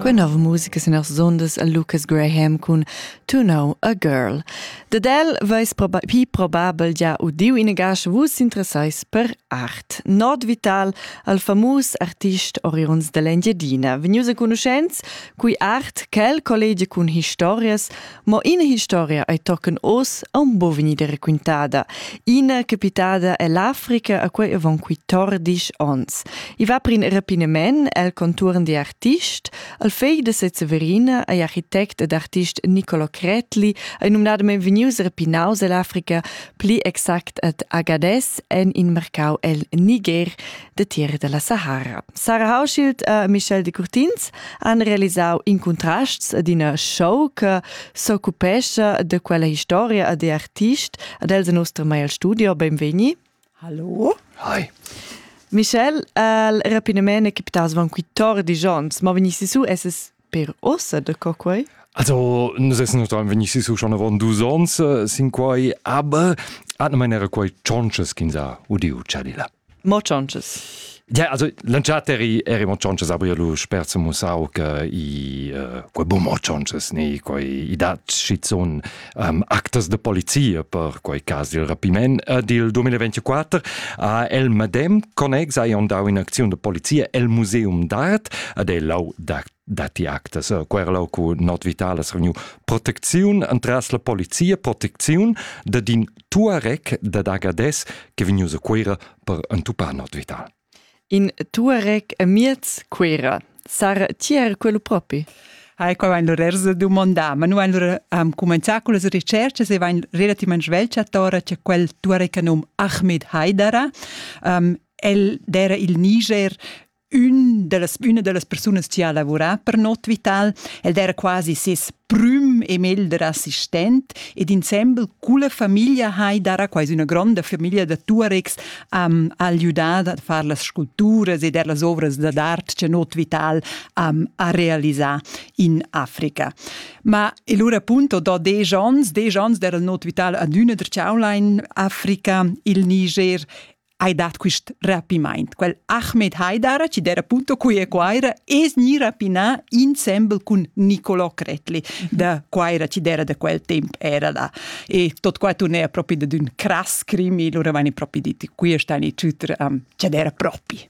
Queen of musica sin as zondas a Lucas Graham cun To Know a Girl. Dad el veis probi probabel già udiu in gash vus interessais per art. Nord Vital al famus artist Orions dell'Engiadina, vegnius a conoscents cui art quel collegia cun historias Ma ina historia ei tochen oz aun bo vegnida raquintada. Ina capitada ell'Africa a quei avon quei tordisch ons. I va per in rapinament el conturn di artist, al fegl de Severina ei architect ed artist Nicolo Cretli ei numnadamain vegnius rapinaus ell'Africa, pli exact ad Agades en in marcau el Niger detieri dalla Sahara. Sarah Hauschild e Michel de Curtins han realisau in contrasts ad ina show che s'occupescha de quella historia e de artist ad els nostra Mail Studio. Benvegni. Hallo. Hi. Michel, il rapinament è capitato avant 14 anni, ma venissi su esses per ossa de co quei? Also, nus essen uns vegnissi su schon avon dus ons, sin quai, aber, atna mein era quai tschonches kin sa, udiu chadila. Mo chonches. Ja, also lanciater i eri mo chonches aber lu sperse musau che i uh, quei bum o chonches ni quei i dat schizun um, actas de polizia per quei cas dil rapiment uh, dil 2024 a el medem connex hai andau in acziun de polizia el museum d'art ad el lau dat dati actas querlau cu not vitalas reveniu protecziun entras la polizia protecziun de din Tuareg dad Agadez che vegnius a Cuira per entupar not vital. In Tuareg amiez Cuira sar tier quello propi. Hai qua vain lur dumandà, ma nu vain lur am cumenzà con las ricercas e vain relativament svelch a Tora c'è quel tuareca num Ahmed Haidara. Um, el d'era il Niger ün dellas, üna dellas persunas chi ha lavurà per Not Vital, ed era quasi ses prüm e melder assistent, ed insembel culla famiglia hai dara quasi üna gronda famiglia da Tuaregs am ajüdà a far las sculpturas ed er las ovras da d'art che Not Vital am ha realisà in Africa. Ma e lura appunto do desch ons, desch ons d'era il Not Vital ad üna der Chaulein Africa, il Niger hai dat quist rapimaint. Quel Ahmed Haidara, chi d'era appunto qui e Quaira, es gni rapinà insembel cun Nicolò Cretli da Quaira, chi d'era da quel temp era da. E tot qua turnea propi da d'ün crass crimi, lura vani propi dit, qui stan i tuter, um, chi d'era propi.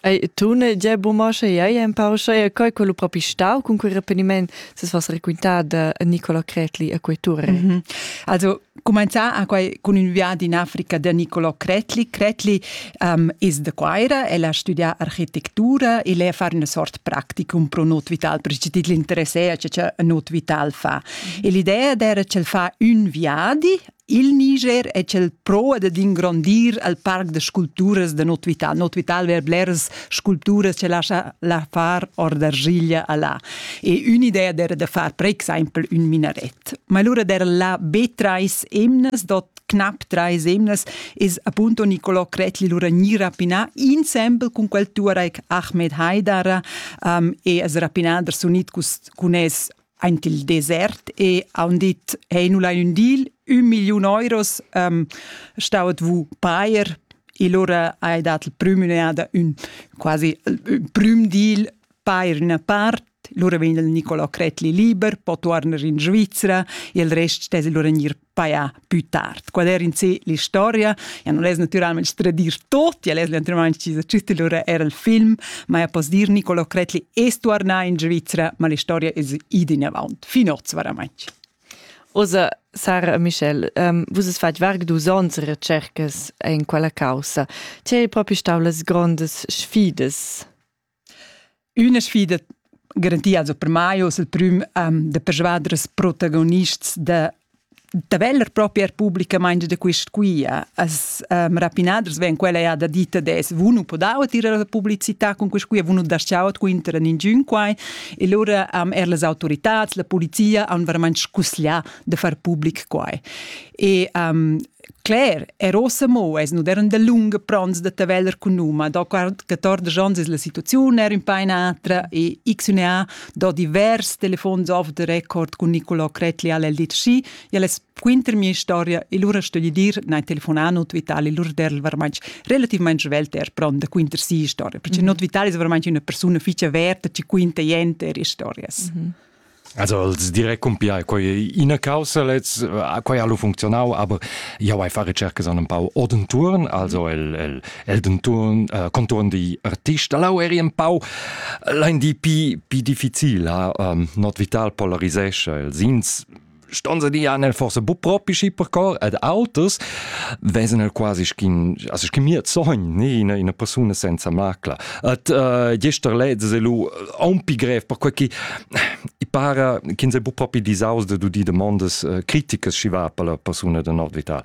Ei, tu ne gia buca sche ei empau sche quei quello propi stau cun quei repeniment se vas raquintada a Nicola Cretli a quei tour. Mm -hmm. Also comenzà a quei con un viadi in Africa da Nicola Cretli. Cretli um, is de Quaira, el ha studià architettura e lei far una sort practicum pro not vital, perché ti l'interesse a che not vital fa. Mm -hmm. E l'idea era che el fa un viadi Il Niger è quel pro ad ingrondir al parc da sculpturas da Not Vital. Not Vital ver bleras sculpturas che lascia la far or d'argiglia a là. E un'idea era da far per exempel un minaret. Ma allora era là be treis emnas, dot knapp drei semnas is appunto Niccolò Cretli lura ni rapinà insembel cun quel Tuareg Ahmed Haidara um, e as rapinà der sunit cun es Aint il desert e haun dit, hey, nu lain ün dil, ün milliun euros ähm, staut vous pair. Il ora hai dat il prüm un'eada ün quasi ün prüm deal pair üna part lura vegn il Nicolò Cretli liber, po tuorner in Svizzera e il rest stess lura gnir paia più tard. Qual era in sé l'historia? Ja non es naturalmente tradir tutti, es naturalmente ci giusti lura era il film, ma ja poss dir Nicolo Cretli es tornà in Svizzera, ma l'historia es id in avant, fin oz veramente. Osa Sara Michel, um, vus es fatg varg dus ons recercas in quella caussa. Ti hai propi stau las grondas sfidas? Üna sfida garantia also per mai hoz il prüm ehm da persvader ils protagonists da da veller propi eir publicamaing da quist quia. As ehm rapinaders vegn quella eir da dir ed es vou nu podauet ir alla publicità cun quist quia, vou nu das-chau quinter a ningün quai. E lura ehm eir las autoritats, la polizia haun varamaing scussià da far public quai. E ehm Cler, er ossa mo es nu derun dalunga pronts da taveller cun num, ma do 14 ans es la situaziun er ün pa in atra e XUNA do divers telefons off the record cun Nicolò Cretli al LDC. El es quinter mia storia e lura stögli dir, nein telefonà not Vitali, lura derl varmaint relativmaing svelt er pron da quinter si storia, perché mm -hmm. not Vitali es varmaint üna persuna fich averta, chi quinta jenter historias. Mm -hmm. Also els direi cumpia quei ina caussa lez quei ha lu funzionau aber jau hai fa recercas an un pau odenturn also el el el denturn uh, conturn di artist lau eri un pau lein di pi pi difficil ha um, not vital polarisesce il sins ston se di nel forse bu propi schi per cor ed autos wesen el quasi schin also schin mir zogn ne in una persona senza macla et uh, gester led se lu un pi grev per quei che i para che se bu propi disaus de du di demandas uh, criticas schi va per la persona de nordvital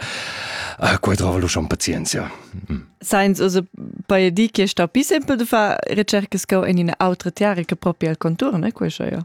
uh, quei trova lu schon pazienzia mm. Seins also bei di che sta pi simpel de fa recercas co in una autre tiare che proprio al contur ne quei ja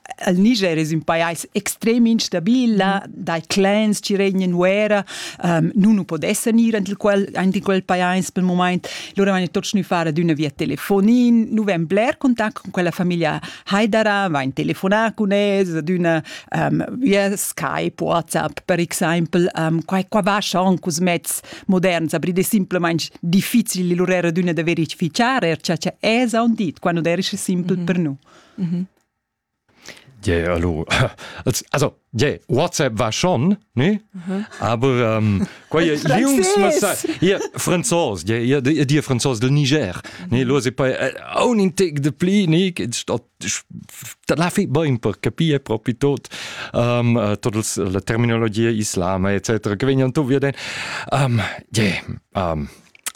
il Niger es ün pajais extrem instabil, là mm. dai clans chi regnan uera, um, nun nu pod esser gnir ant il quel, aint in quel pajais pel mumaint, lura vain tots gnü far ad üna via telefonin, nu vain bler contact con quella famiglia Haidara, vain telefonar cun es ad üna um, via Skype, WhatsApp per exaimpel, um, qua, qua vascha anche us mezz moderns, aber è simplesmente difficile lur era d'una da verificar, er cha es aun dit, qua non erisce simpel mm -hmm. per nu. Mm -hmm. Ge allura als also ge WhatsApp war schon ne aber ähm, quai ihr Franzos ihr dir Franzos del Niger ne los e poi un in tec de pli ne stat da la fi bain per capire proprio tot ähm, äh, todas la terminologia islama etc. che vegnan tu via den ähm, ge ähm,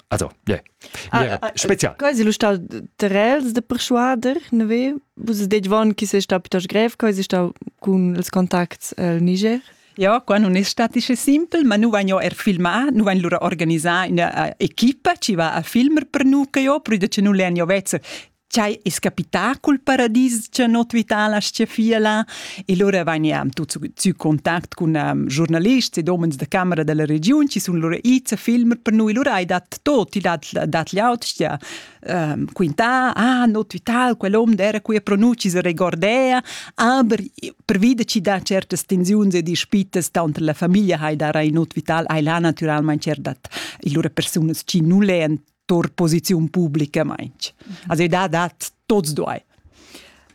Also, yeah. Spezial. Quasi lo stau terels de persuader, ne ve? Vus det von chi se sta piuttost grev, quasi stau cun els contacts al Niger. Ja, qua non è statische simpel, ma nu van jo er filmar, nu van lura organisar una uh, equipa ci va a filmer per nu che jo, prüde che nu len jo vezzer Ch'ei es capità cul paradis cha not Vital aschia fia là e lura vegniam tuts sü contact cun um, giornalists ed homens da camera dalla regiun chi sun lura its a filmer per noi. Lura hai dat tot, il dat dat l'aut stia um, quintà, ah, not Vital, quel hom d'era qui a pronunci se regordea, aber pervida ci dà certas tensiuns e dispitas tanter la famiglia hai da rai not Vital, hai là naturalmente dat lura persunas chi nu lean tor posiziun publica mainch. Also da dat tots duai.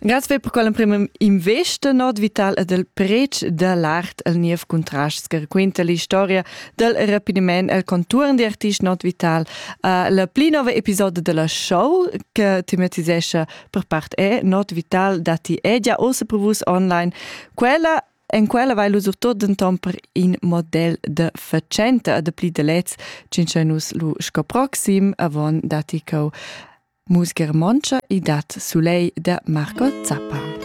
Grazie per quell'emprima investa not vital e del prec da l'art el niev contrast che raquinta l'istoria del rapidement el conturn di artist not vital uh, la pli nova episodio della show che tematisescha per part è not vital dati è già ossa per vus online quella En quella vai lu surtot denton per in model de fatschenta e de pli de lez cincha nus lu sco proxim avon datti cheu Mus Germontscha i dat Sulei de Marco Zappa.